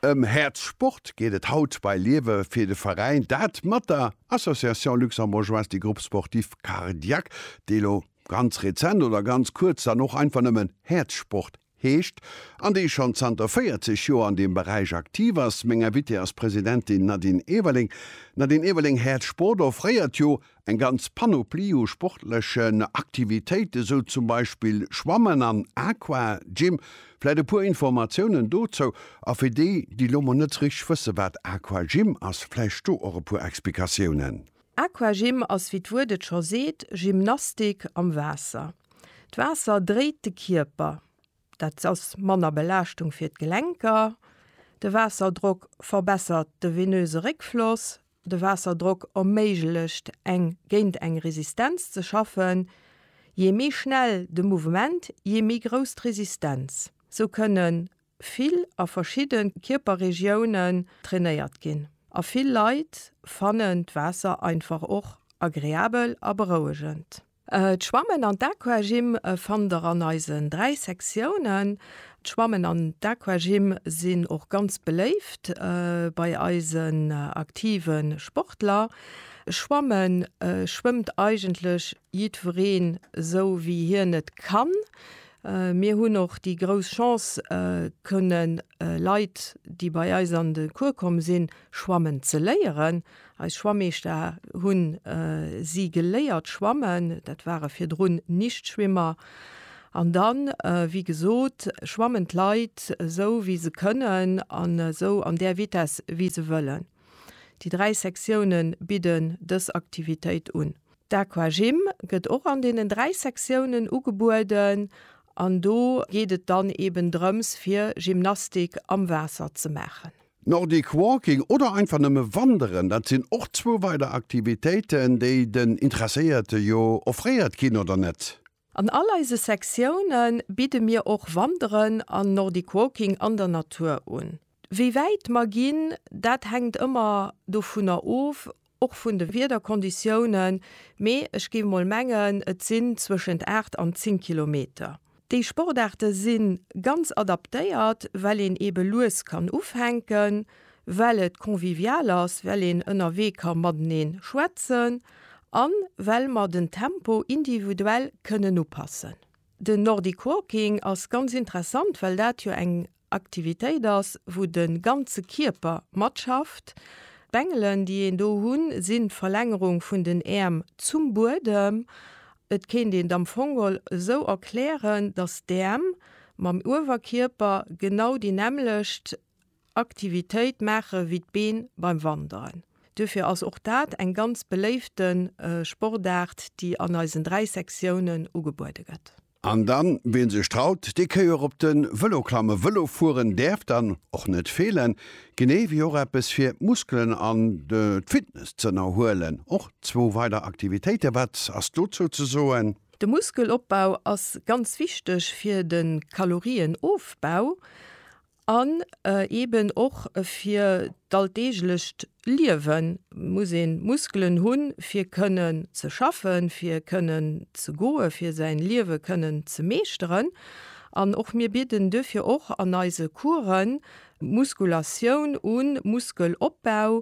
Ëm Häerz Sport geet et haut bei Liewe fir de Veräin, dat mat der Association Luxembourgeoise des Groupes Sportifs Cardiaques, déi elo ganz rezent oder ganz kuerz dann och einfach nëmmen Häerz Sport heescht an déi schonn zanter 40 Joer an deem Beräich aktiv ass. Meng Invitée ass d'Presidentin Nadine Everling. Nadine Everling, Häerz Sport offréiert jo Eng ganz Panoplie u sportlechen Aktivitéiten, sou zum Beispill Schwammen an Aqua Gym. Vläit e puer Informatiounen dozou, a fir déi, déi lo mol net sou richteg wësse wat Aqua Gym ass, vläicht do och e puer Explikatiounen. Aqua Gym ass, wéi d'Wuert et scho seet, Gymnastik am Waasser. D'Waasser dréit de Kierper, dat ass manner Belaaschtung fir d'Gelenker, de Waasserdrock verbessert de venöse Réckfloss, De Waasserdrock erméiglecht eng géint eng Resistenz ze schaffen. Jee méi schnell de Mouvement, jee méi grouss d'Resistenz. Sou kënne vill a verschidde Kierperregiounen trainéiert ginn. A vill Leit fannen d'Waasser einfach och agreabel a berouegend. D'Schwammen an d'Aquagym fannt der an eisen 3 Sektiounen. D'Schwammen an d'Aquagym sinn och ganz beléift bei eisen aktive Sportler. Schwammen schwëmmt eigentlech jiddwereen esou wéi hien et kann. Mir hunn och déi grouss Chance kënne Leit déi bei eis an de Cours komm sinn, Schwammen ze léieren. Eis Schwammeeschter hunn si geléiert schwammen. Dat ware virdrun Nichtschwimmer. An dann, wéi gesot, schwammen d'Leit esou wéi se kënnen an esou an där Vitess wéi se wëllen. Déi dräi Sektione bidden dës Aktivitéit un. D'Aquagym gëtt och an deenen dräi Sektiounen ugebueden an do geet et dann eben drëms fir Gymnastik am Waasser ze maachen. Nordic Walking oder einfach nëmme Wanderen, dat sinn och zwou weider Aktivitéiten, déi den Interesséierte jo offréiert ginn, oder net? An all eise Sektioune bidde mir och Wanderen an Nordic Walking an der Natur un. Wéi wäit mer ginn, dat hänkt ëmmer dovunner of, Och vun de Wiederkonditiounen, mee ech géif mol mengen et sinn zwëschent 8 an 10 Kilometer. Déi Sportaarte si ganz adaptéiert, well een eebe lues kann ufänken, well et convivial ass, well een ënnerwee ka matenee schwätzen an well mer den Tempo individuell kënnen upassen. Den Nordic Walking ass ganz interessant, well dat jo eng Aktivitéit ass, wou de ganze Kierper matschafft. D'Bengelen, déi een do hunn, sinn d'Verlängerung vun den Äerm zum Buedem. Et kéint een et am Fong geholl esou erklären, dass d'Äerm mam Uewerkierper genau déi nämmlecht Aktivitéit maachen, wéi d'Been beim Wanderen. Duerfir ass och dat eng ganz beléifte Sportaart, déi an eisen dräi Sektiounen ugebuede gëtt. An dann, ween sech traut, dee kéi och op den Velo klammen. Velo fueren däerf dann och net feelen, genee wéi och eppes fir d'Muskelen an d'Fitness ze ënnerhuelen. Och zwou weider Aktivitéiten, wat ass dozou ze soen? De Muskelopbau ass ganz wichteg fir de Kalorienofbau An eeben och fir d'alldeeglecht Liewe muss ee Muskelen hunn, fir kënnen ze schaffen, fir kënnen ze goen, fir säin Liewe kënnen ze meeschteren. An och mir bidden duerfir och an eise Coursen Muskulatioun un, Muskelopbau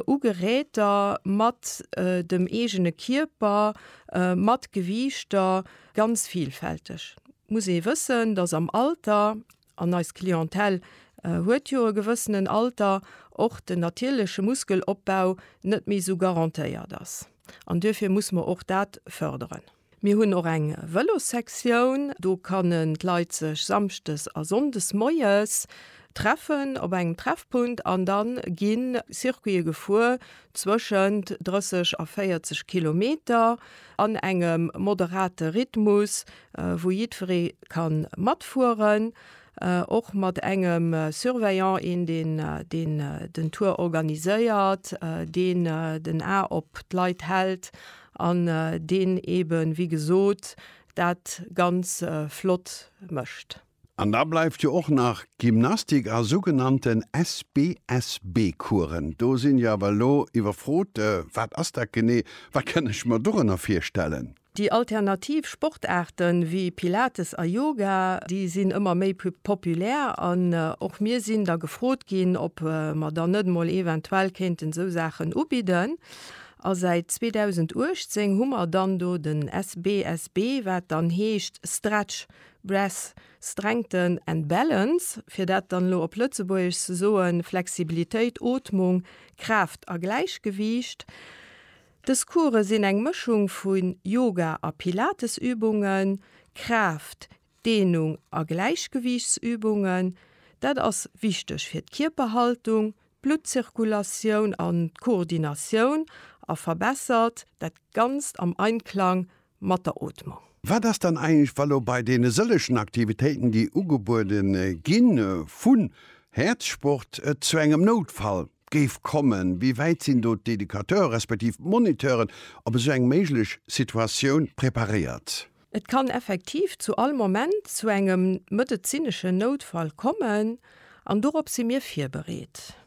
u Geräter mat dem eegene Kierper, mat Gewiichter, ganz vilfälteg. Muss ee wëssen, dass am Alter An eis Clientèle huet jo e gewëssenen Alter, och den natierleche Muskelopbau net méi esou garantéiert ass. An duerfir muss mer och dat fërderen. Mir hunn och eng Vëlossektioun. Do kann-nen d'Leit sech samschdes a sonndes moies treffen op engem Treffpunkt an da gi Circuite gefuer zwëschent 30 a 40 Kilometer an engem moderate Rhythmus, wou jiddweree ka matfueren, och mat engem Surveillant, een deen deen den Tour organiséiert, deen den A op d'Leit hält an deen eeben, wéi gesot, dat ganz flott mécht. An da bleift jo och nach Gymnastik a sougenannten SBSB-Coursen. Do sinn ech awer elo iwwerfrot. Wat ass dat genee? Wat kann ech mer dorënner virstellen? Déi alternativ Sportaarte wéi Pilates a Yoga, déi sinn ëmmer méi populär an och mir sinn da gefrot ginn, ob mer dann net emol eventuell kéinten esou Saachen ubidden. A säit 2018 hu mer dann do den SBSB, wat dann heescht Stretch Breath, Strengthen and Balance, fir dat dann elo op Lëtzebuergesch ze soen, Flexibilitéit, Ootmung, Kraaft a Gläichgewiicht. Dës Course sinn eng Mëschung vu Yoga a Pilatesübungen, Kraaft, Deenung a Gläichgewiichtsübungen. Dat ass wichteg fir d'Kierperhaltung, d'Bluttzirkulatioun an d'Koordinatioun a verbessert dat Ganzt am Einklang mat der Ootmung. Wat ass dann eigentlech, wa lo bei deene sëllechen Aktivitéiten, déi ugebuede gi vu Häerzsport, et zu engem Noutfall géif kommen? Wéi wäit sinn do d'Educateure respektiv d'Moniteuren op esou eng méiglech Situatioun preparéiert? Et kann effektiv zu all Moment zu engem medezineschen Noutfall kommen an dorop si mir virbereet.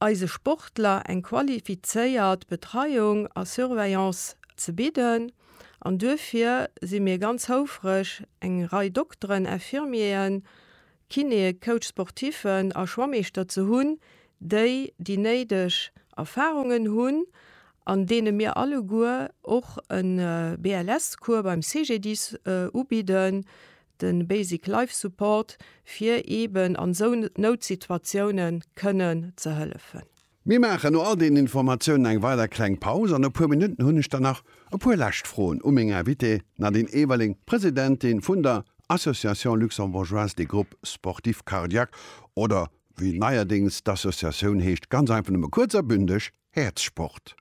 eise Sportler eng qualifizéiert Betreiung a Surveillance ze bidden an duerfir si mir ganz houfreg eng Rei Dokteren, Infirmieren, Kinéë, Coach sportiffen a Schwammeeschter ze hunn, déi déi néideg Erfarungen hunn an deene mir alleguer och e BLS-Cours beim CGDIS ubidden, de Basic Life Support, fir eben an esou Noutsituatiounen kënnen ze hëllefen. Mir maachen no all deenen Informatiounen eng weider kleng Paus an e puer Minutten hunn ech dann nach e puer lescht Froen u meng Invitée Nadine Everling, Presidentin vun der Association Luxembourgeoise des Groupes Sportifs Cardiaques oder wéi neierdéngs d'Associatioun heescht, ganz einfach nëmme kuerz a bündeg, Häerzsport.